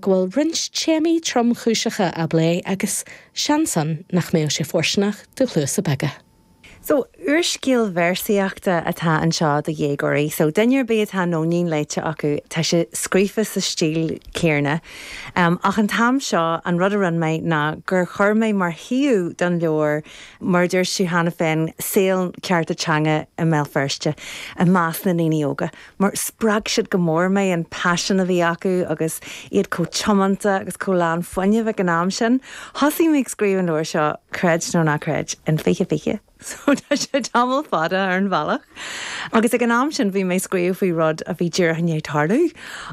go bhfuil roinnt téamaí tromchúiseacha á bplé agus seans ann nach mbeadh sé fóirsteanach do chluasa beaga. So, úrscéal véarsaíochta atá anseo do dhéagóirí. So, duine ar bith atá Nóinín léite acu, tá sé scríofa sa stíl chéanna. Ach an t-am seo, an rud a rinne mé ná gur chuir mé mar shuíomh don leabhar, mar a dúirt tú cheana féin, saol cearta teanga i mBéal Feirste i measc na ndaoine óga. mar spreag siad go mór mé, an paisean a bhí acu agus iad chomh tiomanta agus chomh lán fuinnimh ag an am sin. Thosaigh mé ag scríobh an leabhair seo, creid nó ná creid, in 2020, so tá sé tamall fada ar an bhealach, agus ag an am sin bhí mé ag scríobh faoi rud a bhí díreach i ndiaidh tarlú,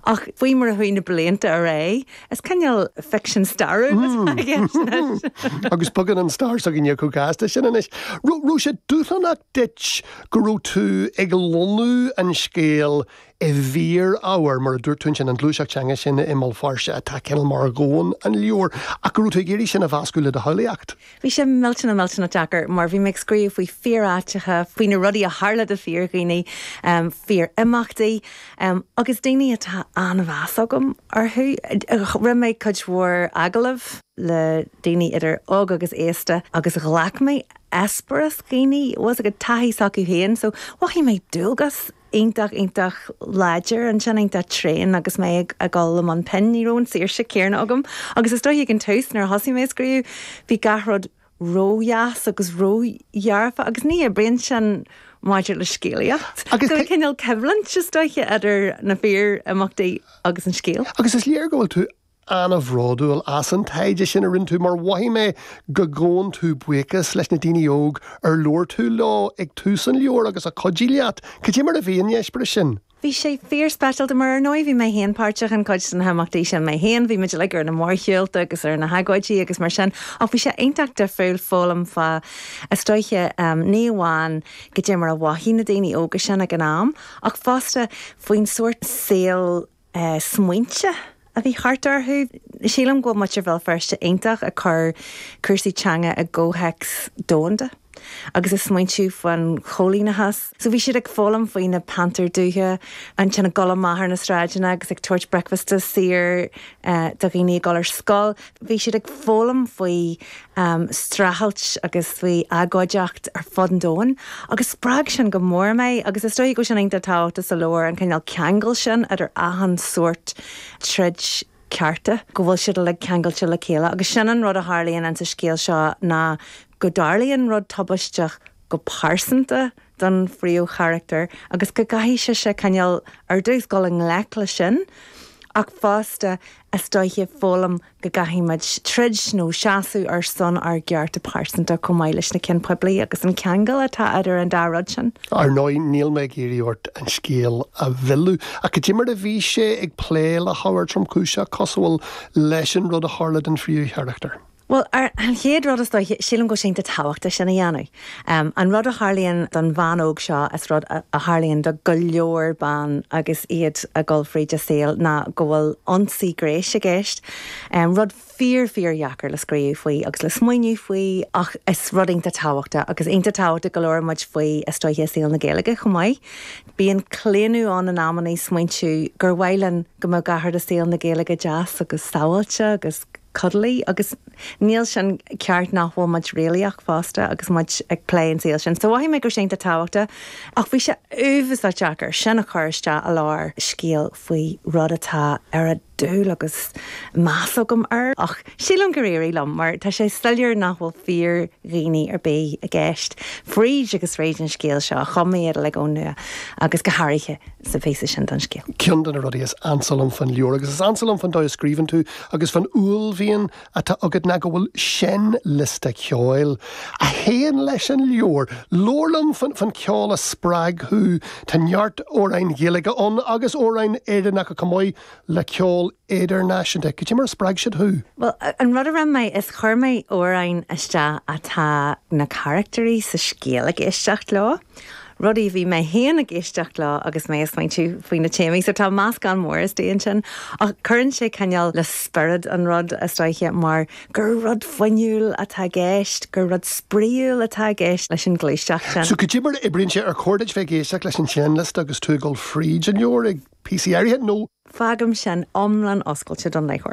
ach faoi mar a chuaigh na blianta ar aghaidh, is cineál ficsean stairiúil atá i gceist anois. Agus bogann an stair s'againne chomh gasta sin anois. Raibh sé dúshlánach duit go raibh tú ag lonnú an scéil i bhfíor-ábhar, mar a dúirt tú ansin, an ghluaiseacht teanga sin i mBéal Feirste atá cineál mar dhomhan an leabhair, ach go raibh tú ag iarraidh sin a mheascadh le do shamhlaíocht. Bhí sé millteanach, millteanach deacair, mar bhí mé ag scríobh faoi fhíor-áiteacha, faoi na rudaí a tharla d'fhíor-dhaoine, fíor-imeachtaí, agus daoine a bhfuil an-mheas agam orthu. Rinne mé cuid mhór agallamh le daoine idir óg agus aosta agus ghlac mé eispéireas daoine, agus a gcuid taithí s'acu féin. So, mhothaigh mé dualgas iontach, iontach láidir ansin, iontach tréan agus mé ag dul i mbun pinn. Ní raibh an saoirse céanna agam agus is dóiche ag an tús nuair a thosaigh mé ag scríobh, bhí gach rud ródheas agus ródhearfa agus ní oibríonn sin maidir le scéalaíocht. So cineál coimhlint, is dóiche, idir na fíor-imeachtaí agus an scéal. Agus is léir go bhfuil tú an-bhródúil as an taighde sin a rinne tú mar mhothaigh mé go ngabhann tú buíochas leis na daoine óg ar labhair tú leo ag tús an leabhair agus a chuidigh leat. Cad é mar a bhí an eispéireas sin? Bhí sé fíorspeisialta mar, ar ndóigh, bhí mé féin páirteach in cuid de na himeachtaí sin mé féin, bhí muid uilig ar na mórshiúlta agus ar na hagóidí agus mar sin ach bhí sé iontach difriúil foghlaim fá, is dóiche, ní amháin cad é mar a mhothaigh na daoine óga sin ag an am ach fosta faoin sórt saoil a smaointe agus smaointe a bhí thart orthu. Sílim go bhfuil muintir Bhéal Feirste iontach ag cur cúrsaí teanga i gcomhthéacs domhanda agus ag smaointiú faoin choilíneachas. So bhí siad ag foghlaim faoi na pantair dubha, ansin ag dul amach ar na sráideanna agus ag tabhairt bricfeasta saor do dhaoine ag dul ar scoil. Bhí siad ag foghlaim faoi streachailt agus faoi agóideacht ar fud an domhain agus spreag sin go mór mé agus is dóiche go bhfuil sin iontach tábhachtach sa leabhar, an cineál ceangal sin idir achan sórt troid cearta, go bhfuil siad uilig ceangailte le chéile. Agus sin an rud a tharlaíonn insa scéal seo ná go dtarlaíonn rud tubaisteach go pearsanta, don phríomhcharachtar agus go gcaithfidh sise, cineál, ar dtús dul i ngleic leis sin ach fosta is dóiche foghlaim go gcaithfidh muid troid nó seasamh ar son ár gcearta pearsanta chomh maith leis na cinn poiblí agus an ceangal atá idir an dá rud sin. Ar ndóigh, níl mé ag iarraidh ort an scéal a mhilleadh ach cad é mar a bhí sé ag plé le hábhar tromchúiseach cosúil leis an rud a tharla don phríomhcharachtar, Bhuel, ar an chéad rud, is dóiche, sílim go bhfuil sé iontach tábhachtach sin a dhéanamh. An rud a tharlaíonn don bhean óg seo is rud a tharlaíonn do go leor ban agus iad ag dul fríd a saol ná go bhfuil ionsaí gnéis i gceist. Rud fíor, fíor dheacair le scríobh faoi agus le smaoineamh faoi ach is rud iontach tábhachtach agus iontach tábhachtach go labhrann muid faoi is dóiche i saol na Gaeilge chomh maith. Bíonn claonadh ann in amannaí smaointiú gur mhaith linn go mbeadh gach rud i saol na Gaeilge deas agus sábháilte agus. 'cuddly' agus níl sin ceart, nach bhfuil muid réalaíoch fosta agus muid ag plé an saol sin. So mhothaigh mé go raibh sé iontach tábhachtach ach bhí sé uafasá deacair sin a chur isteach i lár scéal faoi rud atá an-dúil agus meas agam air ach sílim gur éirigh liom mar tá sé soiléir nach bhfuil fíor dhaoine ar bith i gceist fríd agus fríd an scéal seo. Chum mé iad uilig ón nua agus go háirithe sa phíosa sin den scéal. Ceann de na rudaí is ansa liom faoin leabhar, agus is ansa liom faoin dóigh a scríobhann tú, agus fán uaillmhian atá agat ná go bhfuil seinnliosta ceoil a théann leis an leabhar. Labhair liom fán cheol a spreag thú. Tá neart amhráin Ghaeilge ann agus amhráin Éireannacha chomh maith le ceol idirnáisiúnta. Cad é mar a spreag siad thú? Bhuel, an rud a rinne mé, is chuir mé amhráin isteach atá na carachtairí sa scéal ag éisteacht leo. rudaí a bhí mé féin ag éisteacht leo agus mé ag smaointiú faoi na téamaí. So tá meascán mór istigh ansin ach cuireann sé cineál le spiorad an rud is dóiche mar gur rud fuinniúil atá i gceist, gur rud spraíúil atá i gceist leis an ghluaiseacht sin. So cad é mar a oibríonn sé, ar chóir duit bheith ag éisteacht leis an seinnliosta agus tú ag dul fríd an leabhar ag píosaí áirithe nó. fágaim sin iomlán oscailte don léitheoir.